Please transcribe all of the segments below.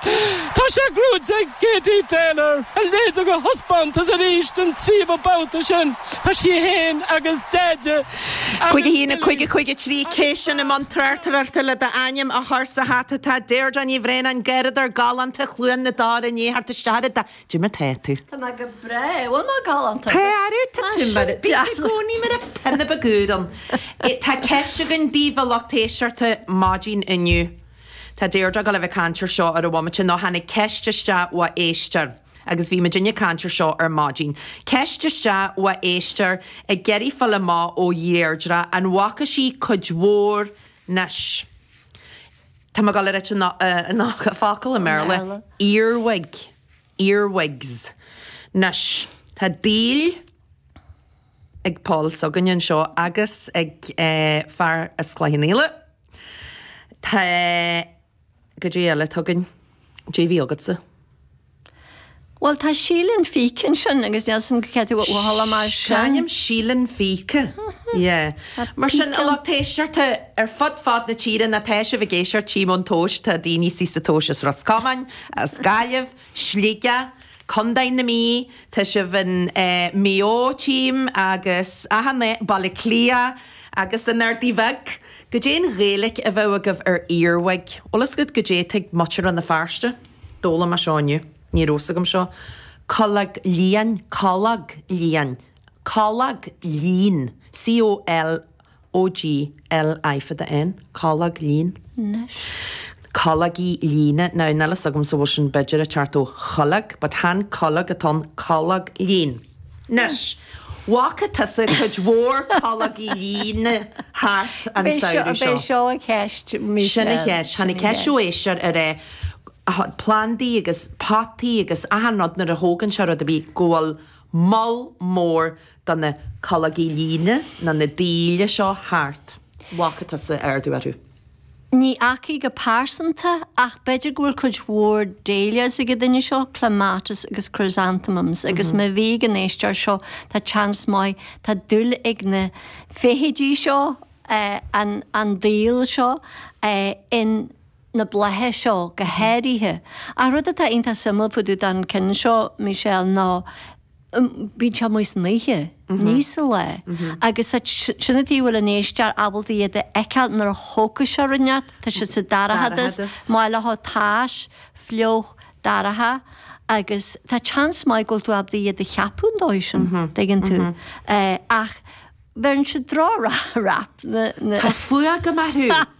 Tá sé cruthaithe ag Katie Taylor, a léirigh a thaispeántas arís den tríomhadh babhta sin. Tá sí féin agus Deaide agus Billy. Cúig a haon a cúig a cúig a trí. Cé sin i mbun tráchtaireachta le d'ainm a chur sa hata. Tá Deirdre Ní Bhraonáin garraíodóir galánta Chluain na dTor i ndiaidh theacht isteach ar a dó. Goidé mar tá tú. Tá mé go breá. Bhfuil mé galánta? Tá arú, tá tú mar a bhíonn i gcónaí mar a pinnib a gcúram. Tá ceist againn daoibh a lucht éisteachta maidin inniu. Tá Deirdre ag dul a bheith ag caint air seo ar an bhomaite nó tháinig ceist isteach ó éisteoir agus bhí muidinne ag caint air seo ar maidin. Ceist isteach ó éisteoir ag iarraidh fáil amach ó Dheirdre an bhfaca sí cuid mhór anois. Tá mé ag dul a ráit an focal i mBéarla, earwig, earwigs. Anois, tá daol. ag Pól s'againne anseo agus ag fear as Cloich Cheann Fhaola. Tá goidé eile tá againn. Goidé bhí agatsa. Bhuel tá Síle an Phíce ansin agus níl fhios agam cad é a tharla mar sin. Cáinim Síle an Phíce. Yeah. Mar sin a lucht éisteachta ar fud fad na tíre nó tá sibh ag éisteacht tchím ón tomhais tá daoine suas sa tomhais as Ros Comáin, as Gaillimh, Sligeach, Co. na Mí, tá sibh in Maigh Eo, tchím, agus, aha, Baile Átha Cliath agus an Ardaidh Bheag. Goidé'n Ghaeilic a bheadh agaibh ar earwig? Bhfuil fhios agat goidé tá ag muintir Rann na Feirste? D'fhoghlaim mé seo inniu, ní raibh fhios agam seo. Colog lín, colog lín, colog lín, C-o-l, o-g, l-í fada-n, colog lín. Anois. Cologaí líne. Now, níl fhios agamsa bhfuil sin b'fhéidir ag teacht ó cholg but chan colg atá ann, colog lín. Anois, bhfaca tusa cuid mhór cologaí líne thart an samhradh seo? B'fhéidir, b'é seo an cheist mise. Sin an cheist. Tháinig ceist ó éisteoir ar eh plandaí agus potaí agus achan rud nuair a thógann sé rud ar bith go bhfuil moll mór de na cologaí líne ná na daoil seo thart. Bhfaca tusa ardú orthu. Ní fhaca go pearsanta, ach b'fhéidir go bhfuil cuid mhór dahlias ag an duine seo, clematis agus chrysanthemums, agus má bhí ag an éisteoir seo, tá seans maith, tá dúil ag na feithidí seo, an an daol seo, in na blátha seo go háirithe. Ach rud atá iontach suimiúil fá dtaobh de na cinn seo, Michelle, ná. bíonn sé amuigh san oíche, ní sa lá, agus sin an tuige a bhfuil an éisteoir ábalta iad a fheiceáil nuair a thógfadh sé rud ineacht, tá siad sa dorchadas, maith leo áit atá tais, fliuch, dorcha, agus tá seans maith go bhfuil tú ábalta iad a cheapadh an dóigh sin, dtuigeann tú, ach bheireann siad droch-rap, na. Tá fuath agam orthu!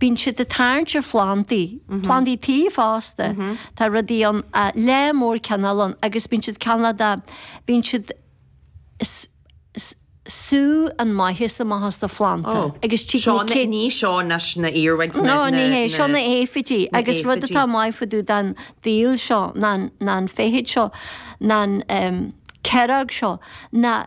Bíonn siad ag tarraingt ar phlandaí, plandaí tí fosta. Tá rudaí ann, lear mór cineál ann agus bíonn siad, cineál de, bíonn siad, sú an maitheas amach as do phlanda agus tig na céadta. Seo, ní seo na earwigs, na. Ná ní hé, seo na aifidí agus rud atá maith fá dtaobh den daol seo ná an, ná an feithid seo, ná an, chiaróg seo, ná.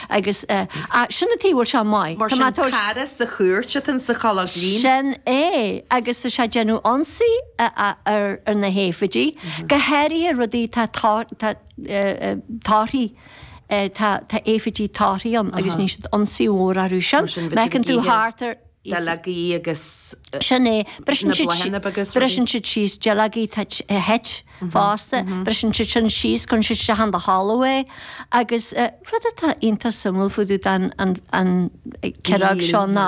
Agus sin an taobh a bhfuil sé maith. Mar sin, cara sa chúirt atá insa cholg lín. Sin é. Agus tá sé ag déanamh ionsaí ar na haifidí, go háirithe rudaí, tá torthaí, tá aifidí torthaí ann agus ní siad ionsaí mhór orthu sin. Feiceann tú thart ar. duilleogaí agus na bláthanna beaga is rudaí. Briseann siad síos duilleogaí duit fosta, briseann siad sin síos, cuireann siad isteach in do thalamh é agus rud atá iontach suimiúil fá dtaobh den chiaróg seo ná,